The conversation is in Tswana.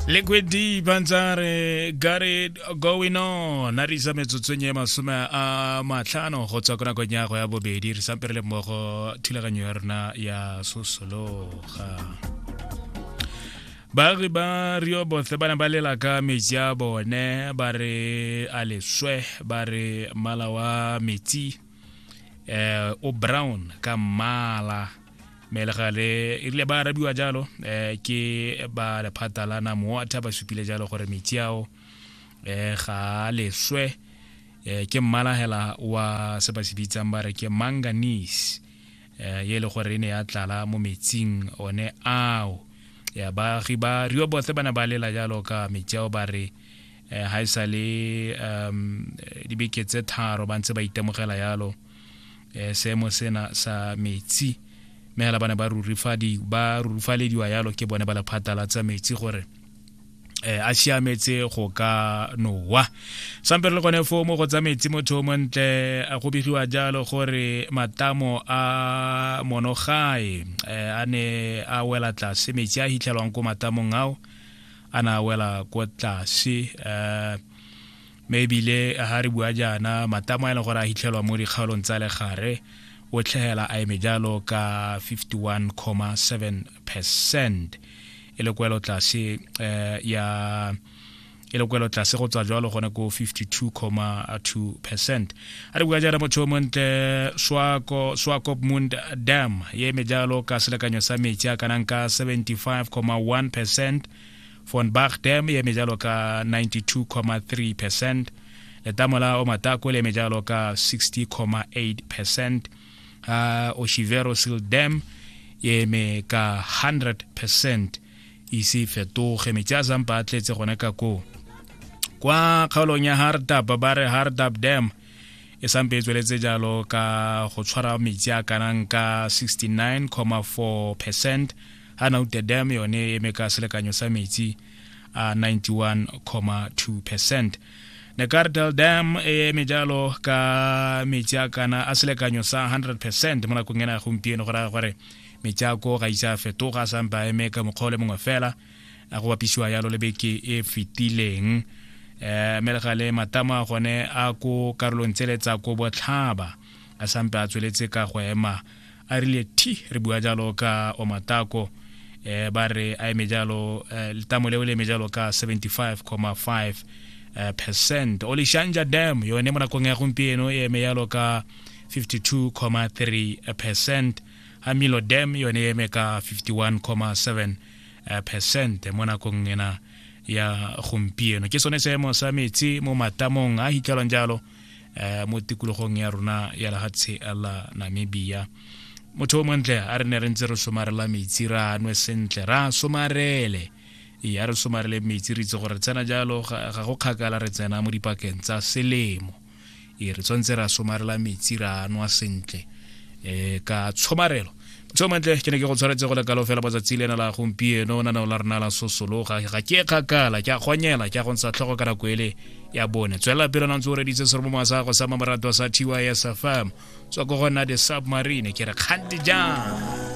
liquid d bantsare got it going on a re isa metsotsong e masome a matlhano go tswa ko nakong ya go ya bobedi re sampe re le mmogo thulaganyo ya rona ya sosologa baagi ba rio bothe ba ne ba lela ka metsi a bone ba re a leswe ba re mmala wa metsi um o brown ka mmala mme le gale e rile ba arabiwa jalo um ke ba lephata la namoatha ba supile jalo gore metsi ao um ga a leswe um ke mmala hela wa se ba se bitsang ba re ke manganese um e le gore e ne ya tlala mo metsing one ao ya baagi ba riobothe ba ne ba lela jalo ka metsi ao ba re um ga e sa le um dibeke tse tharo ba ntse ba itemogela jalo eh, seemo sena sa metsi mme hela ba ne ba rurufalediwa yalo ke bone ba lephata la tsa metsi gore eh a siametse go ka nowa sampe le gone foo mo go tsa metsi motho o montle a go begiwa jalo gore matamo a monogae eh, a ne a wela tlase metsi a hitlhelwang ko matamong ao a na wela ko tlase um Mme ebile ha re bua jaana, matamo a e leng gore a hitlhelwa mo dikgaolong tsa legare o tlhegela a eme jalo ka 51,7 percent e le kwelo tlase eh, ya e le kwelo tlase go tswa jalo gone ko 52,2 percent a re bua jaana motho o montle swakop mund dam ye eme jalo ka selekanyo sa metsi a kanang ka 75,1 percent von Bagdam e eme jalo ka 92,3 percent letamola o matako le eme jalo ka 60,8 percent uh, oshivero seal dam e eme ka 100 percent ise fetoge metsi a zampa a tletse gone ka koo kwa kgaolong ya hardab ba re hardab dam e sampe e tsweletse jalo ka go tshwara metsi a kanang ka 69.4 percent ha naute dam yone e eme ka selekanyo sa metsi a 91.2 percent nekartel dam e eme jalo ka metsi a kana a selekanyo sa 100 percent mo nakong ena ya gompieno go raya gore metsi a ko ga isa a fetoga a sampe a eme ka mokgwa o le mongwe fela a go bapisiwa yalo le beke e fetileng um melegale matama gone a ko karolong tsele tsa ko botlhaba a sampe a tsweletse ka go ema a rile thi re bua jalo ka omatako eh ba re a eme jalo eh, letamo leo le eme jalo ka 75,5 eh, percent o leshanja dam yone mo nakong ya gompieno e eme jalo ka 52,3 percent hamilo dam yone e eme ka 51,7 eh, percent mo nakong ena ya gompieno ke sone seemo sa metsi mo matamong a hitlhelwang jalo eh, mo tikologong ya rona ya lehatshe la namibia motho o montle a re ne re ntse re somarela metsi ra nwe sentle ra somarele ya re somarele metsi re itse gore tsena jalo ga go kgakala re tsena mo dipakeng tsa selemo e re tshwanetse ra somarela metsi ra nwa sentle um ka tshomarelo so mantle ke ne ke go tshwanetse go lekalo fela matsatsi le ena la gompieno o naneo la rena la sosologa ga ke kgakala ke a kgonyela ke a go ntsha tlhogo ka nako ele ya bone tswelela pele na ntse o reditse sere mo moasago sa mamorato sa tys fm tswa ko gona the submarine ke re kgante jang